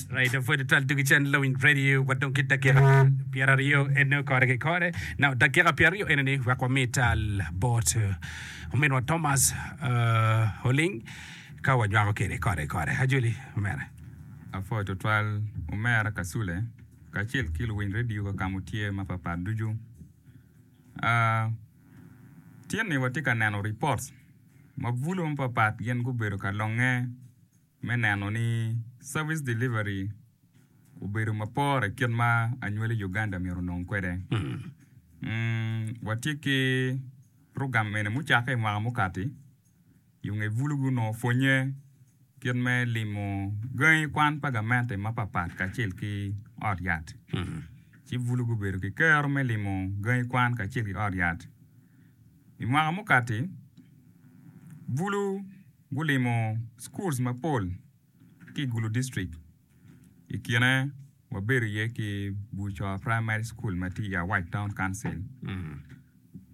Right, pwede twal tugi cen lawiny radio wa dong ki dakika pyera ryo ene kore ki kore. Now, dakika pyera ryo ene ni wek wami tal bot eh, ominwa Thomas eh, Oling ka wanywako kede kore ki kore. Ajoli, omera. Apwoyo tutwal omera Kasule kacel ki luwiny redio kaka mutye mapapat ducu. Ah, Tyen ni watye ka neno ripot ma bulu mapapat gin gubedo ka longe me neno ni service delivery obedo ma pore kit ma anywali Uganda myero onong kwede. Watye ki program eni mucakke i mwaka mukati. i nge bulugi onongo pwonnye kit me limo gangi kwan pa gamente mapatpat kacel ki ot yat. Ci bulugi obedo ki kero me limo gangi kwan kacel ki ot yat. I mwaka mukati, bulu gulimo schools mapol ki i Gulu District i kine. Wabedo iye ki Bucor Praimari Cukul ma tye i Awac Taun Kauncil.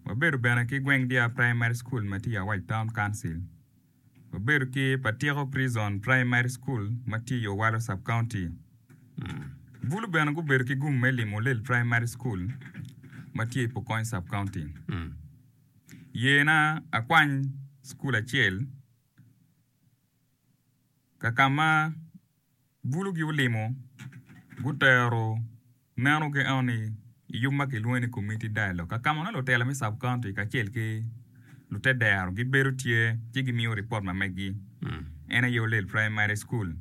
Wabedo bene ki Gweng Dyar Praimari Cukul ma tye i Awac Taun Kauncil. Wabedo ki Patiko Prison Praimari Cukul ma tye i Owalo Sub County. Bulu bene gubedo ki gum me limo Olel Praimari Cukul ma tye i Pokony Sub County. Yena akwany cukul acel ka ka ma Bulugi olimo, gutero meno ki eno ni i yub ma kilwongo ni Community Dialogue ka kama nongo lutela me Sub County kacel ki lute dero gibedo tye ci gimiyo ripot ma megi en aye Olel Primary School.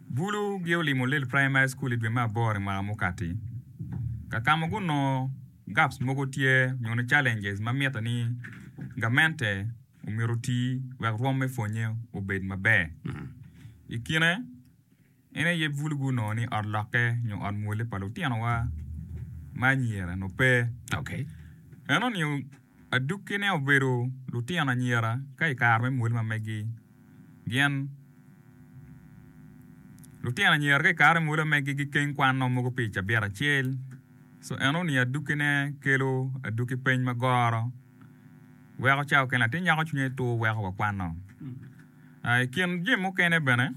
Bulu gi olimo Olel Primary School i dwe me aboro i mwaka mukati ka kama gunongo gaps mogo tye nyo ni challenges ma mitte ni gamente omito oti wek rwom me pwonnye obed maber. I kine, en aye bulugi onongo ni ot lokke nyo ot mwole pa lutinowa ma anyira onongo pe. Eno ni adukkine obedo lutino anyira ka i kare me mwole ma megi gin lutino anyira ka i kare me mwole ma megi gikeng kwan nongo mogo pi cabit acel. Eno ni adukkine kelo adukki peny ma goro. weko cawa kene latin nyako cwinye tur weko wakwano. I kin jami mukene bene,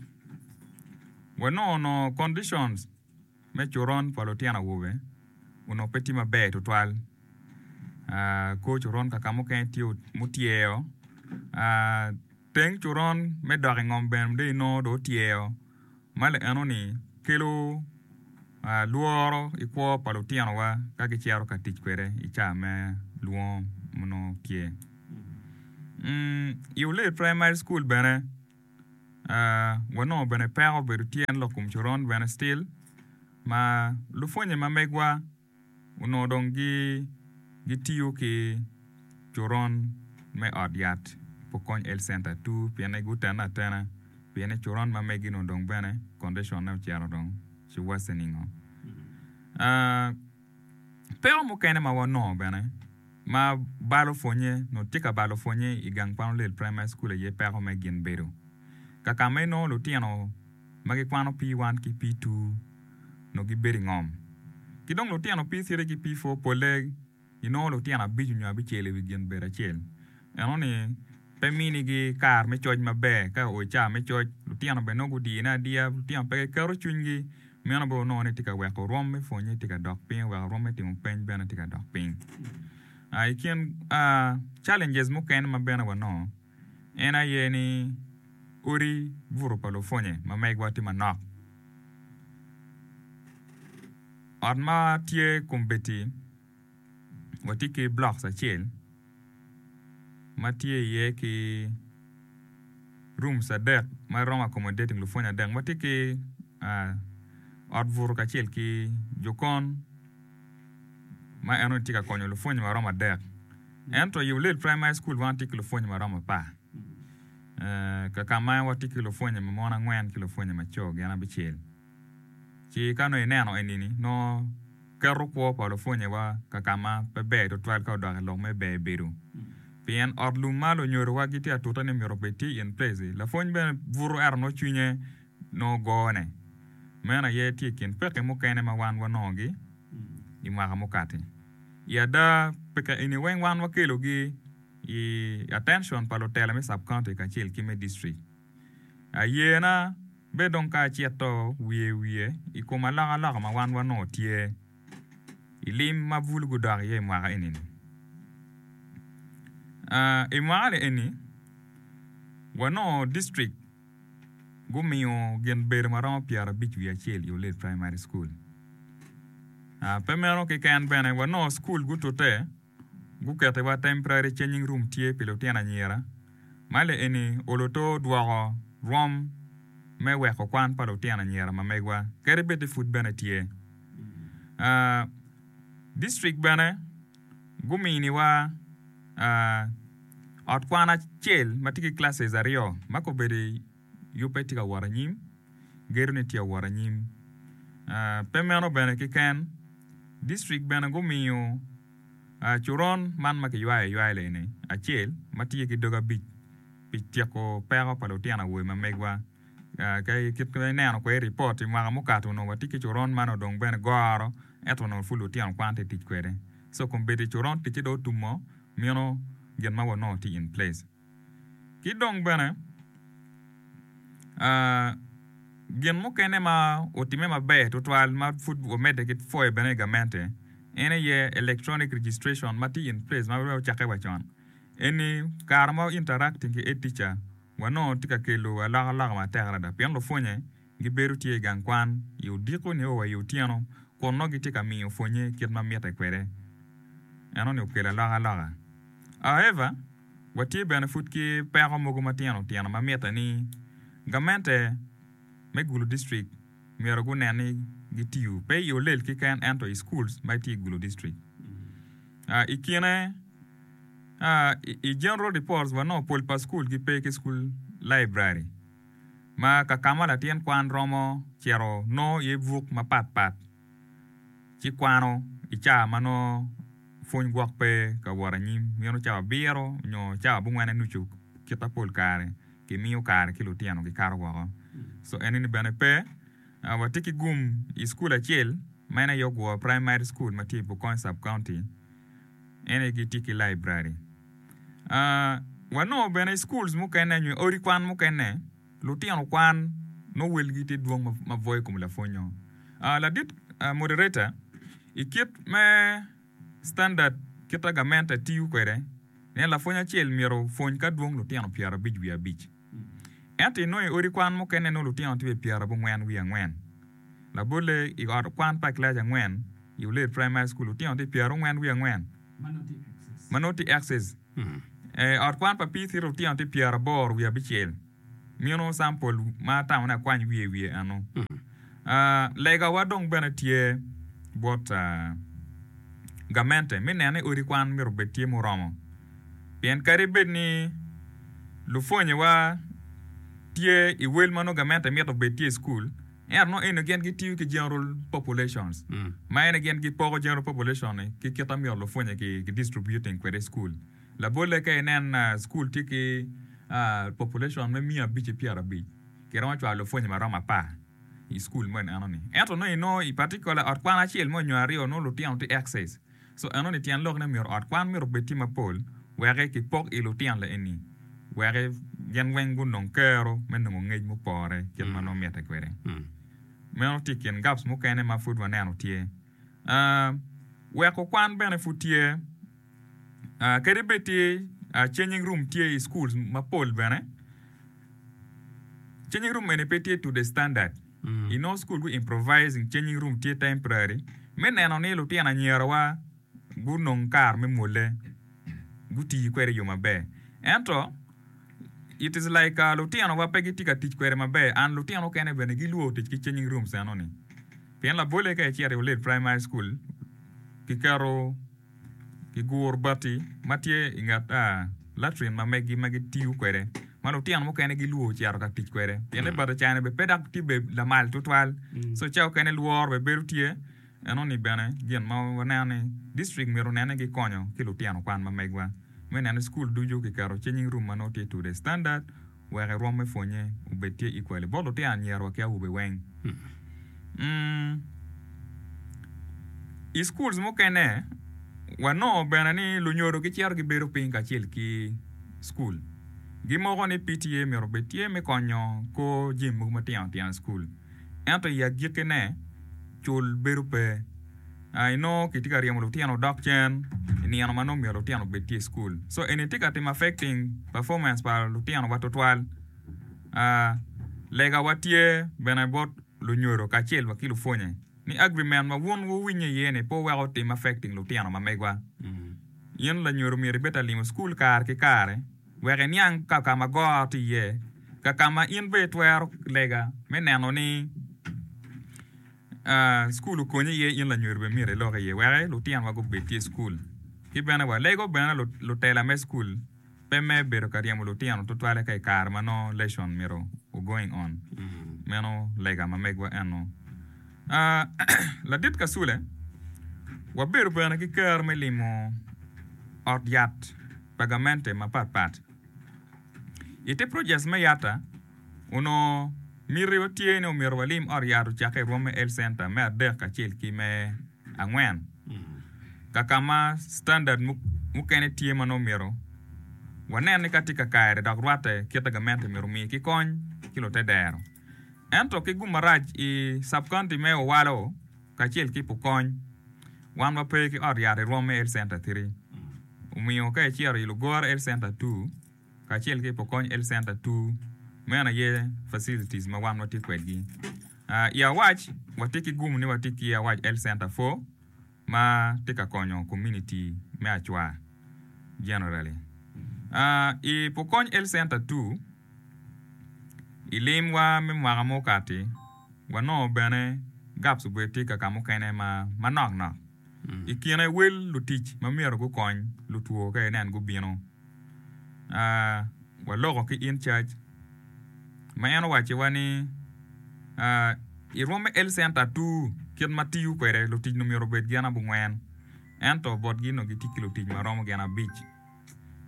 wanongo nongo conditions me coron pa lutino awobe onongo pe tye maber tutwal. Kor coron kaka mukene tye mutyer, Teng coron me dok i ngom bene dong inongo dong otyer ma lienoni kelo lworo ki kwo pa lutinowa ka gicito ka tic kwede i caa me lwongo ma nongo tye. I Olet Primary School bene wanongo bene peko obedo tye en lok kom coron bene still ma lupwonye ma megwa onongo dong gitiyo ki coron me ot yat pukony health center tur pienni gutene atena pienni coron ma megi nongo dong bene condition ne ocito dong ci worsening oo peko mukene ma wanongo bene ma balo pwonye nongo tye ka balo pwonye igang kwan olel primary school aye peko me gin bedo kakama inongo lutino ma gikwano pii wan ki pii tur onongo gibedo i ngom. Ki dong lutino pii citi ki pii pur polle ginongo lutino abico nyo abicel i wi gin bedo acel. Enoni pe minigi kare me coc maber. Ka oa i cawa me coc, lutino bene nongo gudiyone adiya. Lutino pe giketo cwinygi. Meno bene onongo ni tye ka weko rwom me pwonnye tye ka dok piny, weko rwom me timo peny bene tye ka dok piny. I kin challenges mukene ma bene wanongo. en aye ni odi buto pa lupwonye ma megwa tye manok. Ot ma tye kombeddi watye ki blocks acel ma tye iye ki rooms adek ma romo accommodating lupwonye adek. Watye ki ot buto kacel ki jokon. ma en onongo tye ka konyo lupwonye maromo adek ento i Ulele Primary School wan watye ki lupwonye maromo apar kakama watye ki lupwonye ma mon angwen ki lupwonye ma co gin abicel ci ka nongo ineno enini nongo keto kwo pa lupwonye wa kakama pe ber tutwal ka odok ilok me ber bedo pien ot lum ma lunyodo wa gitye atute ni myero obed tye in place lapwony bene buto ento nongo cwinye nongo gone. Meno aye tye i kin pekki mukene ma wan wanongogi i mwaka mukati. I ada, pekki eni weng wan wakelogi i atention pa lutela me sub-county kacel ki me district. Ayena bed dong ka acito wiye wiye i kom alokaloka ma wan wanongo tye i lim ma bul gudok iye i mwaka eni-ni. I mwaka-ni eni, wanongo district. gumiyo gin bedo ma romo pyerabic wiye acel i Olet Primary School. Pe meno keken bene, wa nongo skul gutute, gukettiwa temporary changing room tye pi lutino anyira, ma le eni oloto dwoko rwom me weko kwan pa lutino anyira ma megwa kadi bed ni pud bene tye. District bene. guminiwa ot kwan acel ma tye ki classes aryo ma kobedi yubbe tye ka wot anyim, gedone tye ka wot anyim. Pe meno bene keken, distrik bene gumiyo coron man ma kiywayo aywaya-ni acel ma tye ki doge abic pi tyeko peko pa lutino awobe ma megwa. Kit ma ineno kwede i ripot, i mwaka mukato onongo watye ki coron man odong bene goro ento onongo pud lutino kwan tye ka tic kwede. So kombeddi i coron ticce dong otumo mino gin ma wanongo tye in place. Ki dong bene gin mukene ma otimme maber tutwal ma pud wamedde ki pwoyo bene i gamente en aye electronic registration ma tye in place ma pe ocakke wa con. Eni kare ma interacting ki e-teacher. wanongo tye ka kelo alokaloka matek adada pien lupwonnye gibedo tye i gang kwan i odiko-nio wa i otyeno kun nongo gitye ka miyo pwonnye kit ma mitte kwede. Eno-ni okelo alokaloka. However, watye bene pud ki peko mogo matino tino ma mitte ni gamente me Gulu District, myero gunen ni gitiyo pe i olel keken ento i schools ma tye i Gulu district. I kine, i general reports wanongo pol pa school gi pe ki school library ma kakama latin kwan romo cito nongo iye buk mapat pat ci kwano i caa ma nongo pwony gwok pe ka wot anyim meno caa abiro nyo caa abongwene nucu kita pol kare. ki miyo kare ki lutino gi kato woko so ene ni bene pe wa tye ki gum i school acel ma en aye ogwor primary school ma tye i Bokony sub county en aye gi tye ki library aah wa nongo bene i schools mukene nyo odi kwan mukene lutino kwan nongo wel gi tye dwong ma bwoyo i kom lapwonyo aah ladit moderator i kit me Standard kita gamente tiyo kwede nen lapwony acel myero opwony ka dwong lutino pyerabic wiye abic. Ento inongo i odi kwan mukene nongo lutino tye bene pyerabongwen wiye angwen. Labolle i ot kwan pa kilaci angwen i Uled Primary School lutino tye pyerongwen wiye angwen ma nongo tye excess. I ot kwan pa PC lutino tye pyeraboro wiye abicel. Mino campol ma atamone akwany wiye wiye eno. Legawa dong bene tye bot gamente me neno ni odi kwan myero obed tye muromo. Pien kadi bed ni lupwonyewa tye i wel ma nongo gamente mito obed tye i cukul, Ento nongo eni gin gitiyo ki general populations, ma ene gin gipoko general population-ni ki kit ma myero lupwonye ki distributing kwede i cukul. Labolle ka inen cukul tye ki population me miya abic ki pyera abic, kiromo cwalo lupwonye maromo apar i cukul meno enoni. Ento nongo inongo i particular ot kwan acel mo nyo aryo nongo lutino tye excess. Co enoni tyen lok ne myero ot kwan myero obed tye mapol weki ki pok i lutino le eni weki gin weng gunong kero me nongo ngec mupore kit ma nongo mite kwede. Meno tye i kin gaps mukene ma pud waneno tye. Aa, weko kwan bene pud tye. Aa, kadi bed tye aa changing room tye i schools mapol bene, changing room eni pe tye to the standard. I nongo School gu Improvising Changing Room tye temporary me neno ni lutino anyira wa gu nong kar me mwole gu tii kwede yo maber ento it is like lutino wa pe gi tye ka tic kwede maber and lutino mukene bene gi lwor tic ki changing rooms eno ni pien labolle ka i cito i Ulid Primary School ki keto ki guru bati ma tye i nget latin ma megi ma gitiyo kwede ma lutino mukene gilwor ocito ka tic kwede pienni bati ocane bene pe dok tye bene lamal tutwal so ca okene lworo bene bedo tye enoni bene gin ma waneno ni district myero onene gikonyo ki lutino kwan ma megwa me neno ni cukul ducu kiketo cinging room ma nongo tye to the standard. wek irwom me pwonye obed tye i kwali bot lutino anyira wa ki awobe weng. I schools mukene wanongo bene ni lunyodo gicito gibedo piny kacel ki school gimoko ni PTA myero obed tye me konyo kor jami mogo matino tino i school ento i agikine cul bedo pe. inongo kitye ka ryemo lutino odok cen i nino ma nongo myero lutino obed tye i cukul so eni tye ka timo affecting performance pa lutinowa tutwal legawa tye bene bot lunyodo kacel wa ki lupwonye ni agrimen ma wun wuwinyo iye ni pe wuweko otim affecting lutino ma megwa in lanyodo myero ibed ka limo cukul kare ki kare wek iniang ka ka ma goro tye iye ka ka ma in bene itwero lega me neno ni Cukul okonyi iye in lanyodo bene myero ilok iye wek lutinowa gubed ki i cukul. Ki bene walego bene lutela me cukul pe me bedo ka ryemo lutino tutwalle ka i kare ma nongo lesson myero o going on. Meno lega ma megwa eno. Ladit Kasule, wabedo bene ki kero me limo ot yat pa gamente mapat pat. I te projes me yata, onongo mitiwa tye ni omyero walim ot yat ocakke i Rwomme Health Centre me adek kacel ki me angwen, ka ka ma standard mukene tye ma nongo myero wanene ka tye ka kare dok rwatte kite gamente myero omi ki kony ki lute dero. Ento ki gum marac i sub-county me Owalo, kacel ki pukony. Wan wa pe ki ot yat i rwom me Health Center Three, omiyo ka icito i Lugora Health Center Two kacel ki Pukony Health Center Two, meno aye facilities ma wan watye kwedgi. I Awac, watye ki gumo ni watye ki Awac Health Center Four ma tye ka konyo komuniti me Acwa generally. I Pukony Health Center Two, I limwa me mwaka ma okati wanongo bene gaps obed tye ka kamukene manok nok i kine wel lutic ma myero gukony lutwo ka inen gubino. Waloko ki in charge ma en owaco wa ni irwom me health center atur kit ma tiyo kwede lutic myero obed gin abongwen ento botgi onongo gitye ki lutic maromo gin abic.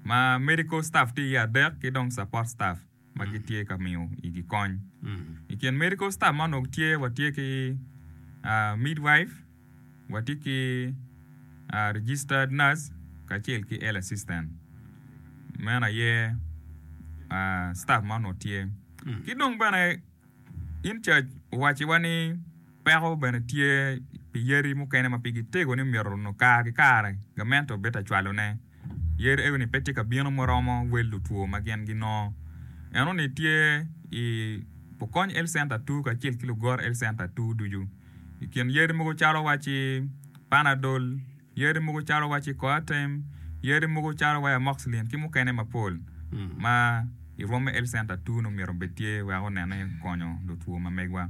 ma medical staff tye iye adek ki dong support staff ma gitye ka miyo igi kony. I kin medical staff ma onongo tye watye ki ah, midwife, watye ki ah, registered nurse kacel ki health assistant. Meno aye ah, staff ma onongo tye. Ki dong bene In cac, wacciwa ni peko bene tye pi yadi mukene ma pigi tego ni myero nongo kare ki kare gamente obed ka cwalone. Yadi ego-ni pe tye ka bino muromo wel lutwo ma gin ginongo. Enoni tye i Pukony Health Center ii kacel ki Lugora Health Center ii ducu. I kin yadi mogo calo wacci Panadol. Yadi mogo calo wa ci coartem, yadi mogo calo wa amoxicillin ki mukene mapol ma i Rwom me Health Center Tunu myero obed tye wek onene konyo lutwo ma megwa.